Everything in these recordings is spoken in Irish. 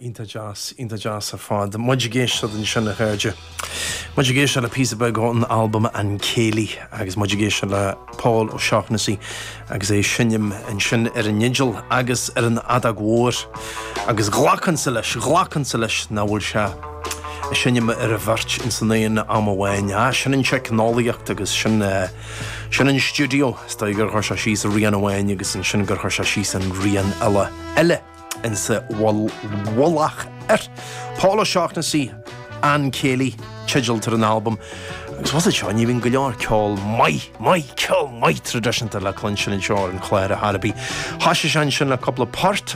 Iontach deas, iontach deas ar fad. Muid ag éisteacht ansin, a chairde. Muid ag éisteacht le píosa beag ón albam An Céilí agus muid ag éisteacht le Pól Ó Seachnasaigh agus é ag seinm ansin ar an fhidil agus ar an fheadóg mhór agus ghlacfainnse leis, ghlacfainnse leis nach bhfuil sé ag seinm ar an bheirt insan aon am amháin. Á, sin an teicneolaíocht agus sin, Sin an stiúideo. Is dóigh gur chuir sé síos rian amháin agus ansin gur chuir sé síos an rian eile eile ins a' mhullach air. Pól Ó Seachnasaigh, An Céilí teideal atá ar an albam agus bhfuil a fhios agat seo ní bhíonn go leor ceol maith, maith, ceol maith traidisiúnta le cluinstin anseo ar an chlár ar chor ar bith. Thoisigh sé ansin le cúpla port.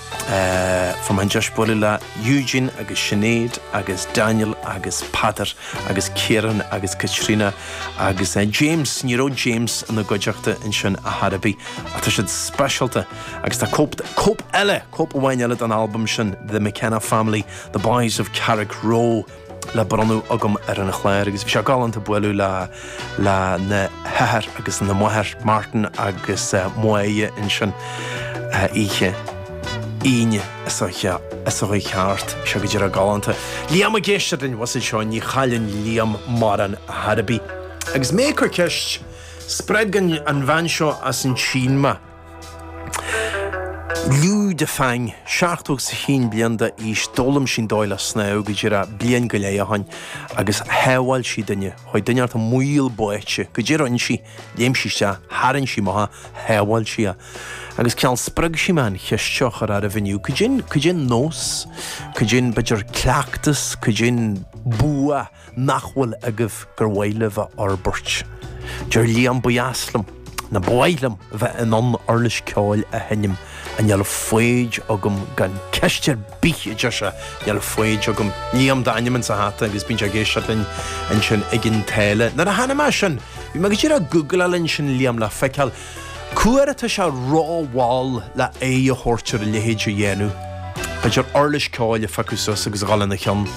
Fuair mé an deis bualadh le Eugene agus Sinéad agus Daniel agus Peter agus Ciarán agus Caitríona agus James, ní raibh James ina gcuideachta ansin ar chor ar bith ach tá siad speisialta agus tá cóip, cóip eile, cóip amháin eile den albam sin The McKenna Family, The Boys of Carrickroe. le bronnadh agam ar an chlár agus bhí sé galánta bualadh le le na hathair agus na máthair, Martin agus Moya ansin oíche Aoine seo a chuaigh thart. Bhí sé go díreach galánta. Liam ag éisteacht, an bhfuil a fhios agat seo, ní chailleann Liam mórán ar chor ar bith. Agus mé ag cur ceist, spreag an bhean seo as an tSín mé. Liu Defang, 70 agus 1 bliain d'aois, d'fhoghlaim sí an dóigh le snámh go díreach bliain go leith ó shin agus shábháil sí duine. Chuaigh duine thart i mbaol báite, cad é a rinn sí, léim sí isteach, tharraing sí amach, shábháil sí é. Agus cineál spreag sí mé an cheist seo a chur oraibh inniu, cad é an, cad é an nós, cad é an b'fhéidir cleachtas, cad é an bua, nach bhfuil agaibh gur mhaith libh a fhorbairt. Deir Liam Ba dheas liom, nó ba mhaith liom, bheith in ann uirlis ceoil a sheinm ach níl foighid agam gan ceist ar bith, a deir sé. Níl foighid agam. Liam d'ainm insa hata agus bíonn sé ag éisteacht linn ansin i gCionn tSáile. Nuair a chonaic mé sin, bhí mé go díreach ag googláil ansin Liam le feiceáil, Cá huair atá sé ró-mhall le aghaidh a thabhairt ar a leithéid a dhéanamh. B'fhéidir uirlis ceoil a phiocadh suas agus a dhul ina cheann.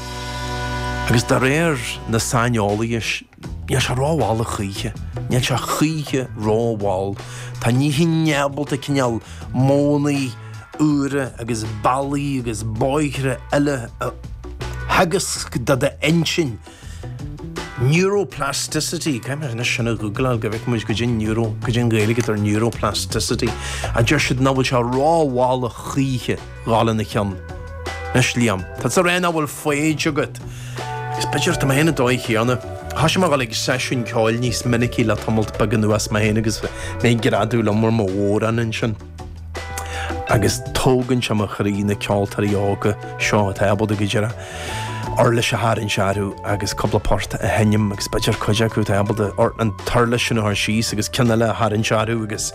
Agus de réir na saineolaithe, níl sé ró-mhall a choíche. Níl sé choíche ró-mhall. Tá an inchinn ábalta, cineál modhannaí úra agus bealaí agus bóithre eile a theagasc do d'intinn. Neuroplasticity, caithfidh mé anois sin a ghúgláil go bhfeicfidh muid cad é neuro, cad é an Ghaeilge atá ar neuroplasticity, a deir siad nach bhfuil sé ró-mhall a choíche a dhul ina cheann. Anois Liam, tá tú ag rá nach bhfuil foighid agat, agus b'fhéidir tá mé fhéin an dóigh chéanna, thoisigh mé ag dul ag seisiúin ceoil níos minicí le tamalt beag anuas mé fhéin agus mé ag greadadh liom ar mo bhodhrán ansin. agus tógann sé mo chroí na ceoltóirí óga seo atá ábalta go díreach uirlis a tharraingt orthu agus cúpla port a sheinm agus b'fhéidir cuid acu atá ábalta an uirlis sin a chur síos agus ceann eile a tharraingt orthu agus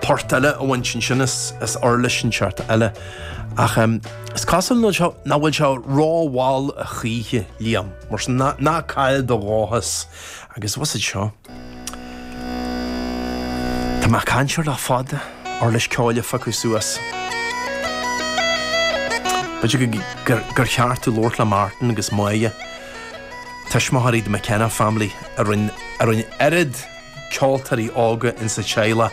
port eile a bhaint ansin as uirlis inteacht eile ach em, is cosúil leo seo nach bhfuil sé rómhall a choíche Liam mar sin ná caill do dhóchas agus tusa seo Tá mé ag caint air le fada. Uirlis ceoil a phiocadh suas. B'fhéidir gur cheart tú labhairt le Martin agus Moya, tuismitheoirí The McKenna Family, a rinne oiread ceoltóirí óga insa teaghlach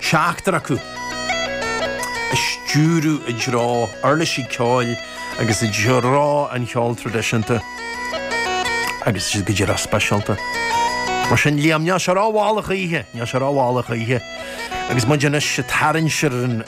seachtar acu a stiúradh i dtreo uirlisí ceoil agus i dtreo an cheoil traidisiúnta agus iad go díreach speisialta. Mar sin, Liam, níl sé rómhall a choíche, níl sé rómhall a choíche agus muid anois ag tarraingt siar ar an.